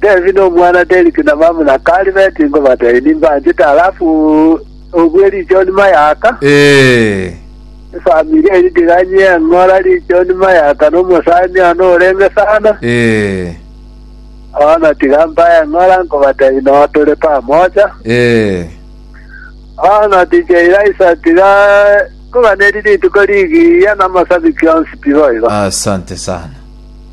Devi nomwana Deriki na bamura Kari beti ngobatebie nimbanchete alafu obue richoni mayaka. Ee. Efamiri eri tiganye engora richoni mayaka nomosani one orenge sana. Ee. Bono tiga mbae engora nkobatebie noo tore pamoja. Ee. Bono ticha Elaisa tiga nkoganeri rituko rigiya namasabiki onsi tiboigo. Asante sana.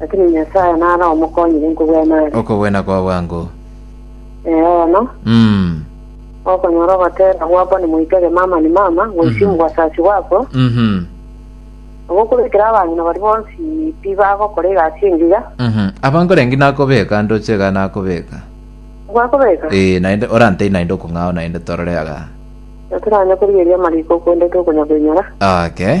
Lakini Nyasae nare omokonyire nkobwene are. Okobwena kwa bwango. Eeno, Mm. okonyora ogoteera gwakwa nimoitege mama ni mama, goichi mu bwasasi bwakwa, Mhm. nabo okobekera abang'ina baria bonsi pi bagokora egasi engiya, Mhm. Abankorengi nakobeka ndoche iga nakobeka. gwakobeka. Eh, naende orantei naende okong'ao naende torore aga. Natoranya korigeria amariko okwendete okonya koinyora. Okay.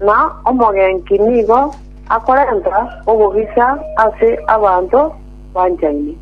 na omogenki nigo akorenta obogisa ase abanto banchaine.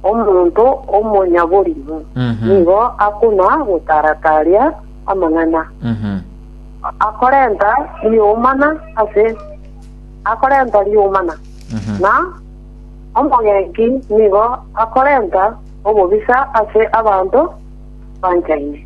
Omonto omonyaborimo nigo akuna gotaara-taaria amang'ana, akorenta ri'omana ase akorenta ri'omana, na omogenki nigo akorenta obobisa ase abanto banchaine.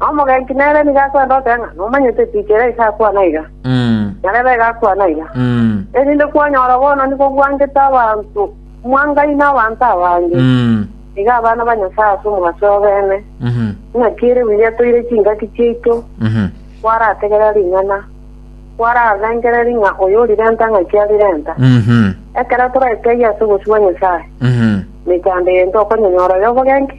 Omogenki nere nigo akwenda gokora ng'a nomanyete echiche ere ase akwana iga, na rebe iga akwana iga, erinde kwanyora obononi bobwangete abanto mwangai na abanto abange, iga abana ba Nyasae ase omogaso oyobeene, ng'a kieri biria toire chingaki chiaito, kwarategerera ring'ana, kwararengereria ng'a oyo orirenta ng'aki arirenta. Ekero toraeteiyo ase obosio bwa Nyasae, mechando eye ntokonyonyora y'obogenki.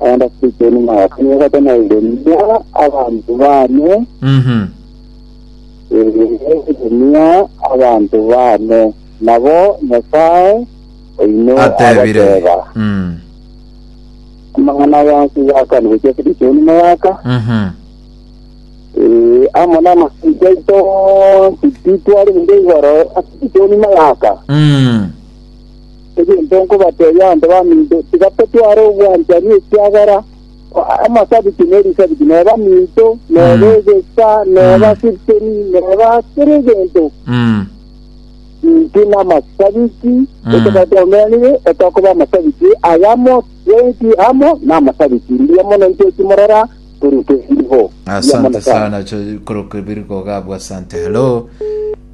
Naende ase ekio nimogakanye gotenenenia abanto bane, Mhm. eegotenenia abanto bane. Nabo Nyasae oino Atebire. agateba, Mm. Amang'ana aya onsi gakani gochia ase ekio nimogaka, Mhm. ee, amo n'amasiche aito onsi titwari gochia igoro ase ekio nimogaka. Mm. Egento nkobatebia abanto baminto, tiga totware obwanchani ekiagera amasabiti nerisabiti neba minto, neba egesa, neba sipteni, neba kera egento. Mm. Inki namasabiti etogari twaomeranire etokoba amasabiti ayamo twenki amo namasabiti mbuya mono intwe ekimorora korwa kebiriho Mbuya mono asante sana cho korokebiri kogabu asante hello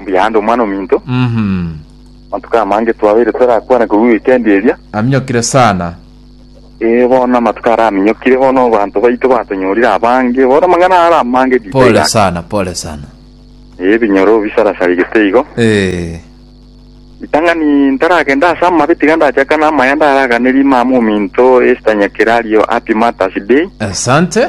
Mbuya aande omwana ominto. Mhm. Amatuko amange twabeire torakwane korwa weekend eria. Aminyokire sana. Ee, bono amatuko aria aminyokire, bono abanto baito batonyorire abange, bono amang'ana are amange detail Pole ake. sana, pole sana. Ee, ebinyoro bisarasarigete igo. Eh. Ritang'ani ntaragenda ase amabe tiga ndachakane amaya ndaraganerie mama ominto Esther Nyakerario Happy Mother's Day. Asante.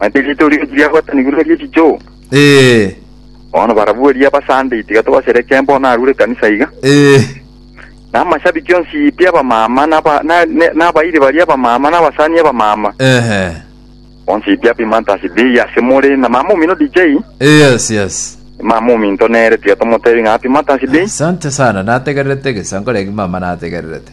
Manyete erio itorio echi biagwetanigwe neri echichoo. Ee. Bono barabwo eria ba Sunday tiga tobasherekee bono arure ekanisa iga. Ee. Na amashabiki onsi pi abamama na aba- na- ne- na abairi baria abamama na abasani abamama. Ehe. Onsi pi happy Mother's Day ase more na mama omino DJ. Yes, yes. Mama ominto nere tiga tomotebi ng'a happy Mother's Day. Asante sana, nategererete gesa nkoreki mama nategererete.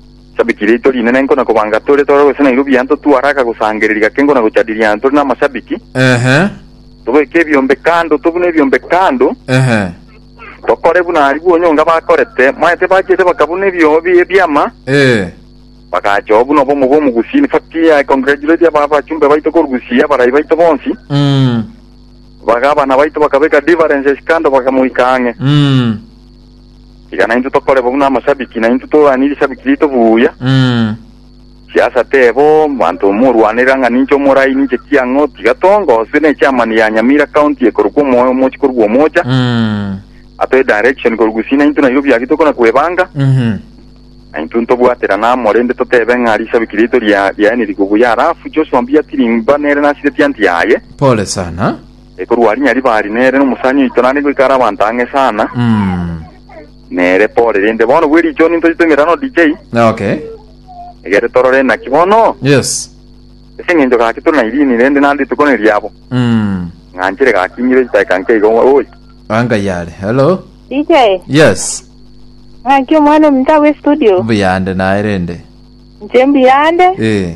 Ishabiki riaito rinene nkona kobanga tore tore gose Nairobi yane totwaraka gosangereria gake nkona gochadiria yane tore namashabiki. Ehe. Tobeke ebiombe kando, tobune ebiombe kando. Ehe. Tokore buna aria bwonyonga bakorete. Mwaete bachiete bakabuna ebio bi- ebiama. Eh. Bagacha oo buna obomo bw'omogusi. In fact, I congratulate aba abachumbe baito korugusi abarai baito bonsi. Mm. Baga abana baito bakabeka differences kando bakamoika ang'e. Mm. Tiga naintwe tokoreba buna amashabiki, naintwe torwanie rishabiki riaito buya. Mm. Siasa tebo, manto morwanera ng'a ninche omorai, ninche ki ang'o, tiga tongose ne chairman ya Nyamira County ekorokwa omoyo omochi korwa omocha, Mm. atoe direction korwa gusii naintwe Nairobi agi tokona kwebanga, Mhm. naintwe ntobwaterana amo rende totebe ng'a rishabiki riaito ria riaeniri kobuya, alafu Joshua mbuya tirimba nere nasireti anti yaye. Pole sana. Ekorwa aria Nyariba aria nere nomosani oito naende goika are abanto ang'e sana nere pore rende bono bwe richo ninto chitwe emerano DJ Okay. egere torore naki bono Yes. ase eng'encho gaki tore na irini rende naende rituko neriabo Mm. ng'anchere gaki ng'ire chitaika nke igo oi Anga yare. Hello. DJ, Yes. ng'aki omwana ominto agwo estudio. Mbuyande naye rende. Inche mbuyande, Eh.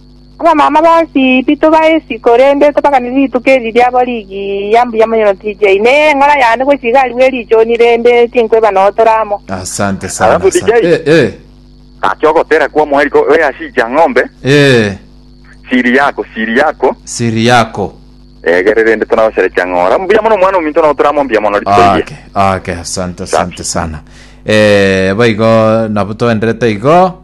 Abamama bonsi titobaisi, korende tobaganire rituko eri riabo rigi ya mbuya monyono TJ. Neye eng'ora yane gochia igari bwe richoni rende tinkweba nootore amo. Asante sana Alafu DJ? asante. Eh, eh. Gaki ogotera kwa omoeri ko oye ase ichia ng'ombe, Eh, siri yako, siri yako, siri yako. egere rende tonagochera chia ng'ora. Mbuya mono omwana ominto notore amo mbuya mono rituko rigiya. Ake, ake, asante, asante sana. Eh, boigo nabo toenderete igo.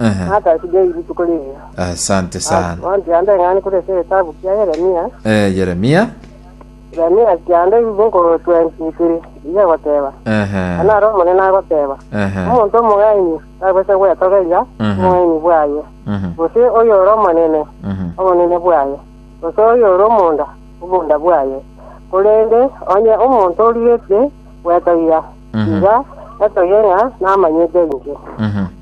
Ehe. natasibei rituko riria. Asante sana. Bonsi ande ng'ani kore ase egetabu kia Yeremia, Eh, Yeremia. Yeremia kianda ebibe nkoro 23 iga egoteba, Ehe. Naro Omonene agoteba, Ehe. omonto omong'aini tabwete gwetogeria Mhm. obong'aini bwaye, Mhm. gose oyo ore omonene, Mhm. obonene bwaye, gose oyo ore omonda, omonda bwaye. Korende onye omonto origetie gwetogia, Mhm. iga etogie ng'a namanyete inche. Mhm.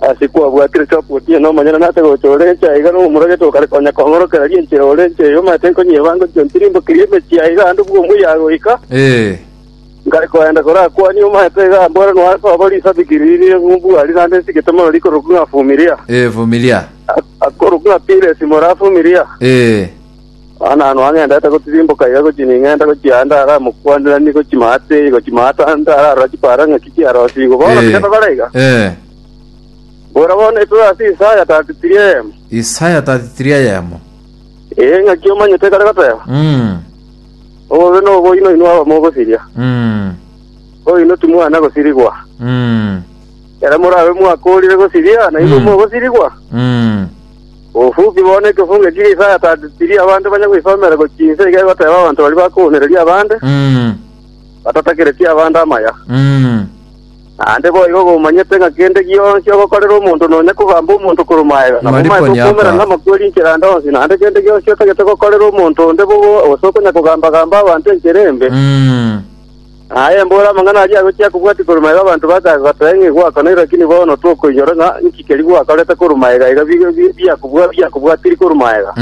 Ase kwabwatire Chopu otieno omonyene nase gocha ore ense aiga nomomuragete okare konya kong'orokereria enchera ore ense eyo omanyete nkonyia ebango chionsi rimbokeria emechie aiga ande bwo omuyaga goika Ee. nkare koenda korakwanie omanyete iga ambore noa sobo risabiki riri ng'umbuari naende nsigete mono rikorokwa ng'a Fumilia Ee, Fumilia. akorokwa ng'a Piresi more Afumilia. Ee. Naanano ang'endete gotiriimboka iga gochia ning'ende gochia ande aramokwanderanie gochia maate eye gochia maate ande ararora chipaara ng'a ki kiarosigwe. Bono Eh. tiga bare iga. Ee, Bora bono esoe ase Isaya 33 eyemo. Isaya 33 eyemo. Ee, ng'aki omanyete ekare goteeba? Mm, Obobe noboino inwe abamogosiria, mm, oino timwana gosirigwa. mm, Ere morabe mwakoorire gosiria, nainwe Mm. mogosirigwa. mm. Obofuki bo nekefonge eki Isaya atatetirie abanto banye goisomera gochia inse iga egoteba abanto baria bakounereria abande, Mm. batatakeretie abande amaya. Mm. Naende boigo gomanyete ng'a kende gionsi ogokorera omonto nonya kogamba omonto korwa magega, nabo Mari omaete konyaka. okoumera namakweri enchera ande onsi, naende kende gionsi otagete gokorera omonto onde bobe gose okonya kogamba-gamba abanto enchera embe. Mm. Aye mbore amang'ana aria agochia kobwatia korwa magega abanto bakaga gotoa ng'a igwakana ere lakini bono tokoinyora ng'a inki keria gwakorete korwa magega iga biakobua biakobwatiri korwa magega.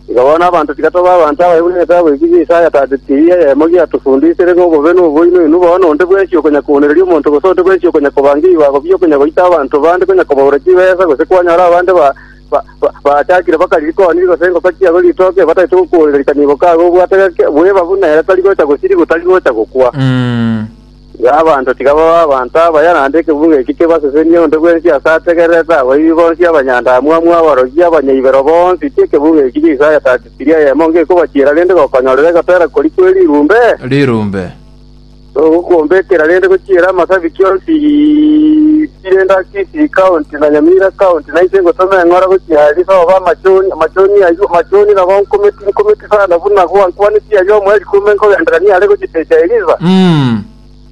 Igo bono abanto tigatoba abanto abaye buna egetabu eki gia Isaya 33 eyemo giatofundisire ng'a obobe nobo inwe inwe bono onde bwensi okonya koonereria omonto gose onde bwensi okonya kobanga ebibago biokonya goita abanto bande konya kobaura chibesa gose kwanyora abande ba Ba- ba- Baachakire bakari rikoni gose engoko chiabo ritoke bataete gokworirerika nigo kago obwate gake bweba buna ere tari gocha gosirigwa tari gocha gokwa. Mm. Iga abanto tiga babe abanto abaya naende ekebuga eki kebasesenie onde bwensi ase ategererete abaibi bonsi abanyandaamwamu aborogi abanyaibero bonsi ki ekebuga eki Jesae atatikirie eyemo ng'ekobachiera rende gokonyorera egotera kori kwe rirumbe. Rirumbe. Nogokuomba ekera rende gochiera amasabiki onsi pi rende ase Kisii county na Nyamira county, na inche ngotoma eng'ora gochia aria sobe amachoni, amachoni ayio, amachoni nabo nkometi, nkometi sana buna gwankwanetie aria omoerio ikume nkogenderania are gochitesia Elisa. Mm.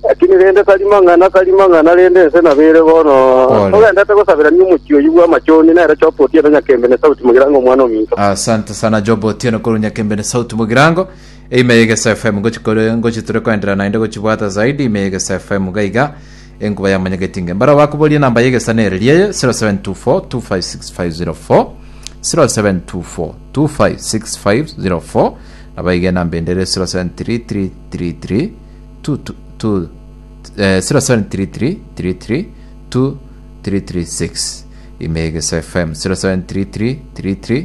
Lakini rende tari mang'ana, tari mang'ana, rende ense nabo ere bono. Pole. Togendete gosaberania omochie oyio bw'amachoni, nere Job Otieno Nyakembe na Sauti Mogirango omwana ominto. Asante sana Job Otieno korwa Nyakembe na Sauti Mogirango. Ime y'egeso FM gochi kore ngochi tore koenderera naende gochibwata zaidi ime y'egeso FM iga iga enkuba ya monyegetinge mbaro bakuborie namba y'egesa nere rie 0724 2565040 nabo iga enamba ende ere 073333 0733332336 ime y'egeso FM 073333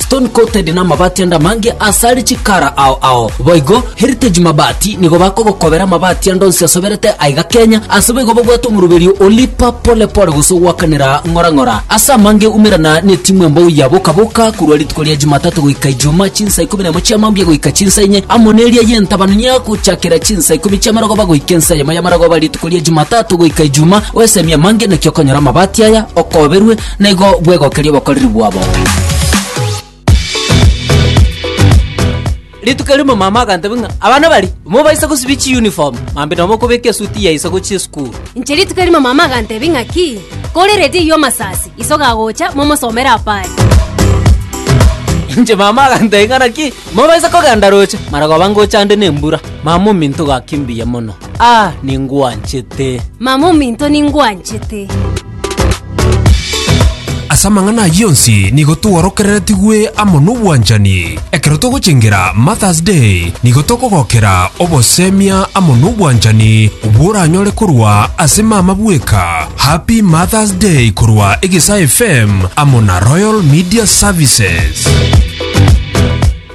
Stone coated namabati ande amange asare chikara ao ao. Boigo Heritage Mabati nigo bakogokobera amabati ande onsi asoberete aiga Kenya ase boigo babwate omoroberio o Lipa Pole Pole gose ogwakanera ng'ora ng'ora. Ase amange umerana netimu embou ya Boka Boka korwa rituko ria Jumatatu goika Ijumaa chinsa ikomi nemo chia mambia goika chinsa inye amo neria yentabanu ya gochakera chinsa ikomi chia marogoba goika ensa eyemo ya marogoba rituko ria Jumatatu goika Ijumaa oesemia amange naki okonyora amabati aya okoberwe Naigo bwegokeria obokoreri bwabo. rituko rimo mama akantebi ng'a abana bari mobaisa gosibia chiuniform mambi nabo okobeka esuti yaisa gochia esukuru inche rituko rimo mama akantebi ng'aki korerete eywo amasasi iso gagocha momosomere apari inche mama akantebi ng'a naki mobaisa kogenda roche maragoba ngocha ande nembura mama ominto gaki mbuya mono ah ningwanchete mama ominto ningwanchete Ase amang'ana ayio onsi nigo tworokereretigwe amo nobwanchani. Ekero togochengera Martha's Day, nigo tokogokera obosemia amo nobwanchani bworanyore korwa ase mama bweka. Happy Martha's Day korwa Egesaa FM amo na Royal Media Services.